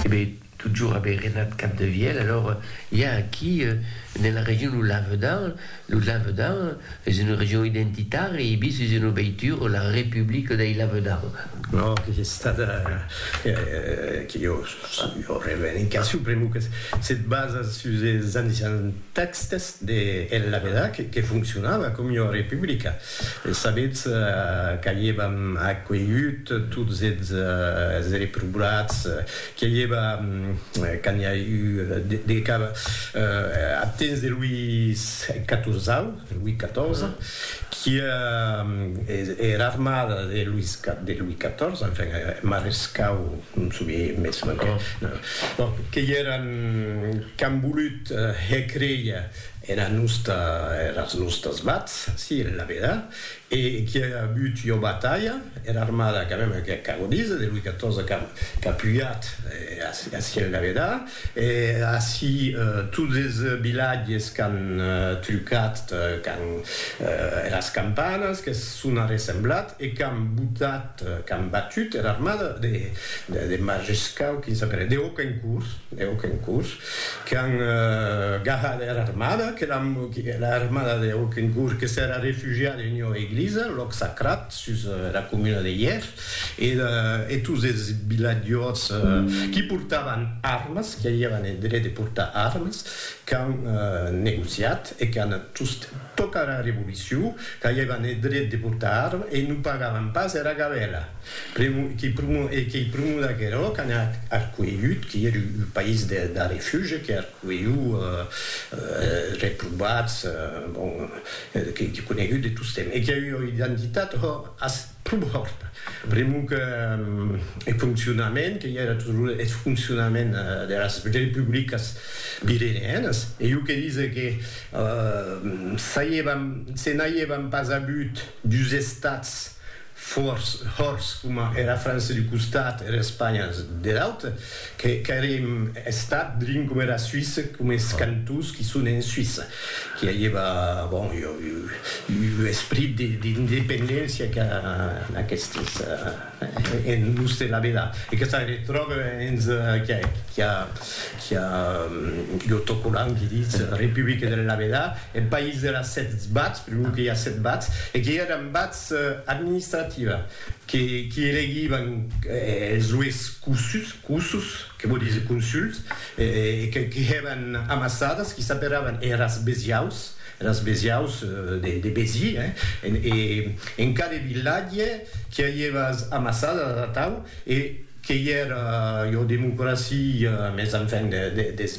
Ebe, totjorn aver renat Capdevièlh, alors i a aquí, nela region lo Lavedan, lo Lavedan es una region identitària, i bis es una veitura, la Republica dei Lavedan. Ò, que es estada, que jo sabi, ua revendicacion, pr'amor que se basa sus es ancians tèxtes de El Lavedan, que foncionava coma ua republica. Sabetz qu'avièvam acuelhut tots eths reprobats, qu'i avièva, quand i a eu de cap, ath temps de Louis Catorzau, Louis Catorze, qu'i a era armada de Louis Catorze, enfin, marescau, non souvie mès, bon, qu'i èran qu'an volut hèr créia, Era nosta, eras nostas vats, si, en la veda, e qui a avut ua batalha, era armada quand même que ac ago díser, de Louis XIV qu'a pujat ací en la veda, e ací tots es vilatges qu'an trucat quand eras campanas que son arressemblat e qu'an botat, qu'an batut era armada de Margescau, quin s'apelèt, de Hauquencourt, de Hauquencourt. Qu'an gahat era armada, que era armada de Hokencourt que s'èra refugiada en ua eglisa, lòc sacrat, sus era comuna de Hièr, e tots es vilatjors qui portavan armas, qui avián eth dret de portar armas, qu'an negociat e qu'an tost tocada era revolucion, qu'avián eth dret de portar armas e non pagavan pas era gabèla. Primo, qui primo, e qui primo d'aquerò qu'an arcuelhut, qui ère un país de, de refuge, que arcuelhut eh, reprovats, bon, qui, qui conegut de tostemp, e qui a ua identitat ho, as, pro hòrta. Primo que eth foncionament, que i era toujours eth foncionament deras republicas pireneanas, e jo que dise que eh, s'a i evan, se n'a i evan pas agut dus estats, Fòrç hòrç coma era França d'u costat, era Espanha der aute, que qu'èrim estat drin coma era Suisse, coma es cantons qui son en Suisse, qui avieva, bon, u esprit d'independéncia qu'a aquestes en l'us de la vela, e que se retròbe hens qui a u autocolant qui ditz Republique der la vela, eth país der a sèt bats, per lo que i a sèt bats, e qui èran bats, administrativa que qui elegivan es ues cussus, que vò díser consuls, que hèvan amassadas, qui s'aperavan eras besiaus, eras besiaus de Besi, e en cada vilatge qui avieva as amassadas atau, e qu'ei era ua democracia, mès enfin des.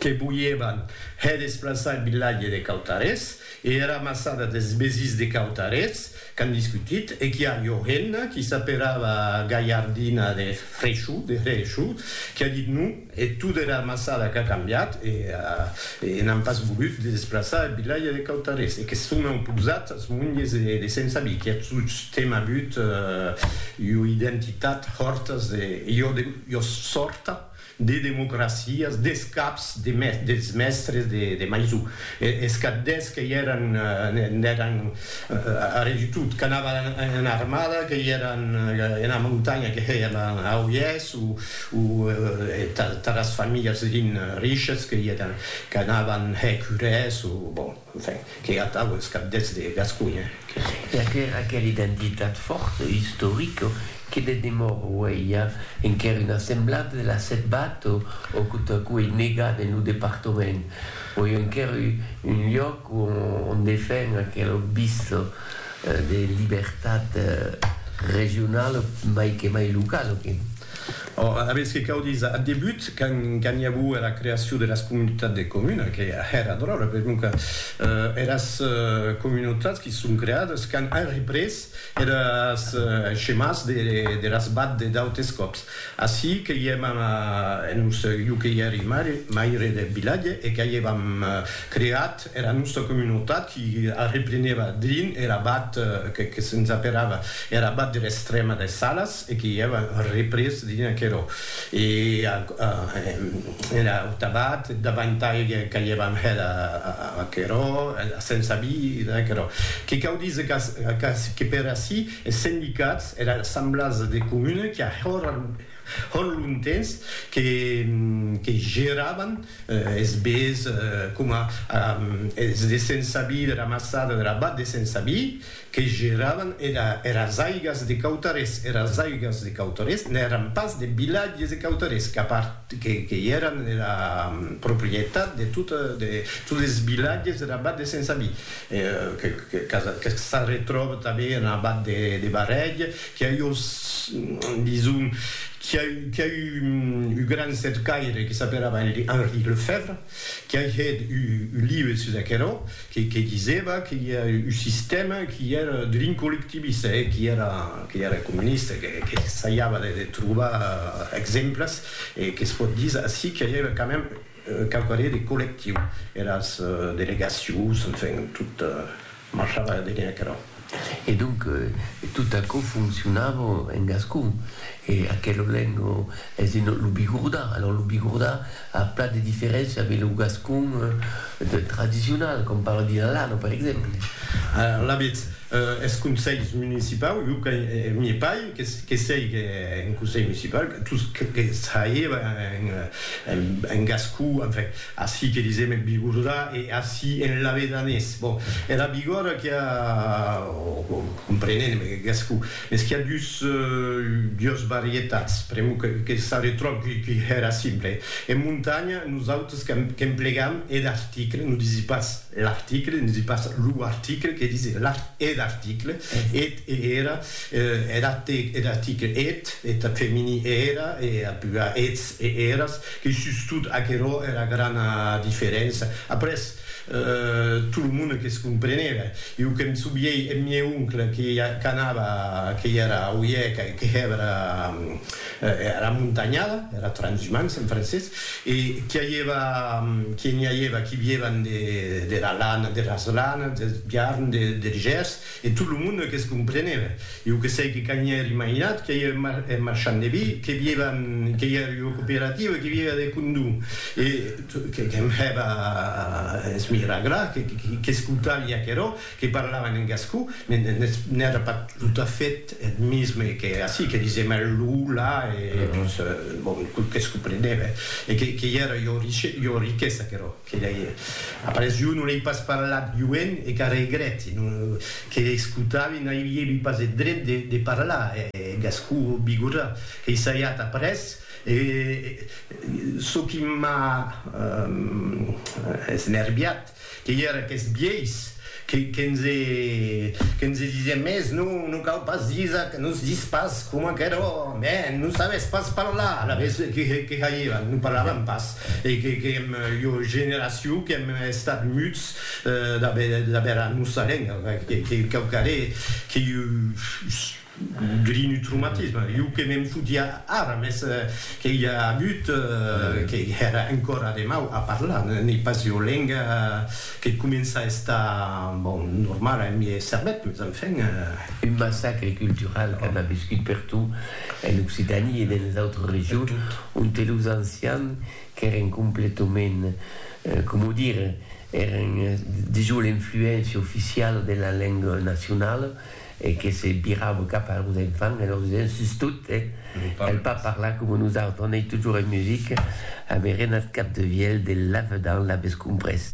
que voièvan hè desplaçar eth vilatge de Cautarés e era massada des Besís de Cautarés qu'an discutit e qu'i a Johenna, qui s'aperava Galhardina de Freshoo, de Hreeshoo, qui a dit non e tot era massada qu'a cambiat e e n'an pas volut de desplaçar eth vilatge de Cautarés e que son auposat as monges de Sent Sabí qui a tostemp avut ua identitat hòrtas de jo de jo sòrta de democracias, des caps des mèstres de Maisó, es capdèths que i èran, n'èran arrè du tot, qu'anavan ena armada, que i èran ena montanha, que hèian a oièths, o taras familhas riches, que i èran, qu'anavan hèr curès, o bon. Enfin, qu'ei atau es cabdets de Gasconha que. E aquera aquera identitat fòrta, istorica, que de demor uei a enquer una semblada de la setbat o o que totacú ei negat en lo departament. Uei enquer u un lloc o on defen aquela obvista de libertat regionala mai que mai locala que. Ora, aviètz que cau díser, ath debut, quand i aguo era creacion de las comunautats de comuna, que èra dròlle, per non que eras comunautats qui son creades quand an représ eres chemàs de las bad de d'autes còps. Ací que i èm en lo seu, jo que i èri maire deth vilatge e qu'a i èvam creat Era nòsta comunotat qui arreplenèva drin er abat que que se'ns aperava er abat der Estrèma des Salas e que i èva représ drin aquerò e a era aut abat davantai qu'aievam hèt aquerò a se'ns abi dins aquerò que cau díser qu'ac que per ací es sendicats era assemblasa de comuna qui a hòr Hòn lontens que geravan es bés coma es de Sensabi, de la Massada, de la Bat de Sensabi, que geravan eras aigas de Cautarés. Eras aigas de Cautarés n'èran pas de vilatges de Cautarés, que i èran era proprietat de totes es vilatges dera Bat de Sensabi, que s'arretròba tanben ena Bat de Barrèg, Qu'i a eu, dison, qu'i a eu, qu'i a eu un gran cercaire que s'aperava Henri Lefèvre, qu'i a hèt un live sus aquerò, que, que disèva que i a un sistèma qu'i èra drin collectivista, e qu'i èra, qu'i èra comunista, que, que s'essaiava de, de trobar exemples, e que's pòt díser ací qu'i a eu quand même, Quauquarré de collectiu, eras delegacions, enfin, tot marchava darrèr aquerò. E donc, tot aquò foncionava en gascon. E aquela lenga es en lo bigordà. Alòrs, lo bigordà a plan de diferéncia de lo gascon tradicional, com parla Dilalano, per exemple. Alavetz, Eth conselh municipau, jo que m'ie paï, que sèic en conselh municipau, tos que saie en gascó, enfin, ací que disem en bigordà e ací en lavedanés, bon, era bigòrda qu'i a, o comprenem en gascó, mès qu'i a dus, dues varietats, pr'amor que s'arretròbi qui hèra simple. En montanha, nosautes qu'emplegam eth article, non disi pas L'article, ne dis pas lo article, que dise l'art ed article, et e era, ed atte ed attiche, et, et femini e era, e apua ets e eras, que sustot aquerò era grana diferença. Après, tot lo monde que's compreneve. Iu que'm souviei eth mieu oncle que qu'anava, que i era a Oieca e que hèvera Era montanhada, era transhumance en francés, e qu'i aieva, qu'i n'i aieva qui viévan de, dera lana, deras lanas, deth biarn, de, der gers, e tot lo monde que's compreneve. Iu que sei que qu'a n'i èri mainat, qu'i aieve mar, eth marchand de vi, que viévan, qu'i èri ua cooperativa, qu'i viéva de condú, e, que, que'm hèva a esmiraglar, que, que'scoutavi aquerò, que parlavan en gascon, n'è era pas totafèt eth misme que ací, que disèm eth lo, la, e doncs, bon, tot que's comprenève, e qu'ei era ua riquesa, aquerò, que lei, après, jo non ei pas parlat joen, e qu'a regrèti, non, que escotavi n'aviévi pas eth dret de parlar en gascon bigorrà, qu'ei saiat après, e çò qui m'a esnerviat, Que i era qu'es biais que nse disièm mès non, non cau pas disar que nos dis pas coma qu'era mè non sabés pas parlar, alavetz que jairàn non parlaràn pas e que èm ua generacion qu'èm estat muts d'aver era nosa lenga, que cau caré que Grinutrumatisme, jo que me'n fotia ara, mès que i a agut que èra encòra de mau a parlar, n'ei pas ua lenga que comença a estar, bon, normala en miei cervèth, mès enfin. Un massacre cultural qu'an aviscut pertot en Occitània e dens les autres regions, onte los ancians qu'èren completament, coma o dire, èren dejós l'influéncia oficiala de la lenga nacionala, e que se virava cap a los enfants e lor disián, sustot, el pas parlar coma nosautres, anèi totjorn en musica, amerenat cap de vièlh de lavedan, l'avètz comprés?